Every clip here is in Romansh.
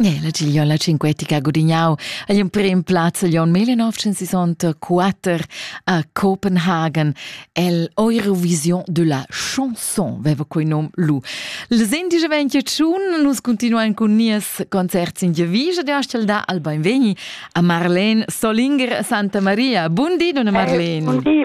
La gigliola cinquetica ha gudignau agl emprem plaz agl onn 1964 a Copenhagen. El Eurovision de la chanson veva quei nom lu. Les indies vegn tschun, nus continuein cun nies concert sin Gievisa de Astelda al Beinvegni a Marlene Solinger Santa Maria. Bundi, donna Marlene. Bundi,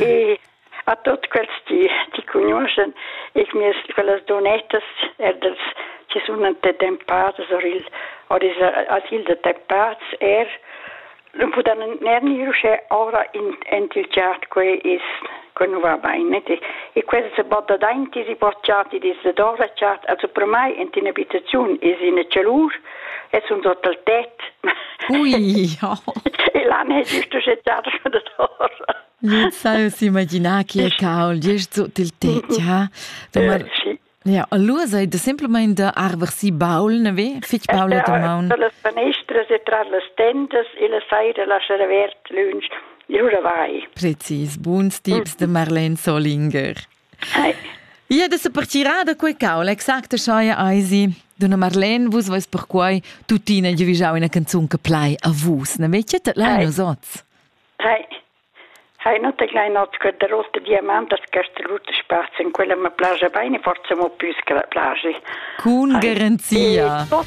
E a tutt quels ti, ti cugnuoschen ich mir quellas donettas er dels che sun ante temp pares or il or is asil de temp pars er non pudan ner ni rusche ora in entilgiat que is que nu va bene e, e quels se botta dainti si bocciati dis de dora chat also per mai enti in abitaziun is in celur Es un total tet. Ui, ja. E là n'è giusto gettare da torre. Sa imaginar che caul gest sut il tet, ja. Sì. Ja, allora sei da semplicemente arver si baul, ne ve? Fitch baul da maun. Tra las fanestras e tra las tendas e la saira lasciar avert lunch. Giura vai. Precis, buns tips de Marlene Solinger. Hi. Ia da sa partirà da quei caul, exacta scheia eisi. Donna Marlene, vus vois perquai tuttina giuvigiau ina canzun che plai a vus. Ne vecchia te lein os oz? Hi. Hi, non te glein oz quella rotta diamantas che strutte spazi, in quella me plagia bene, forse mo più che la plagia. Con garanzia. E tot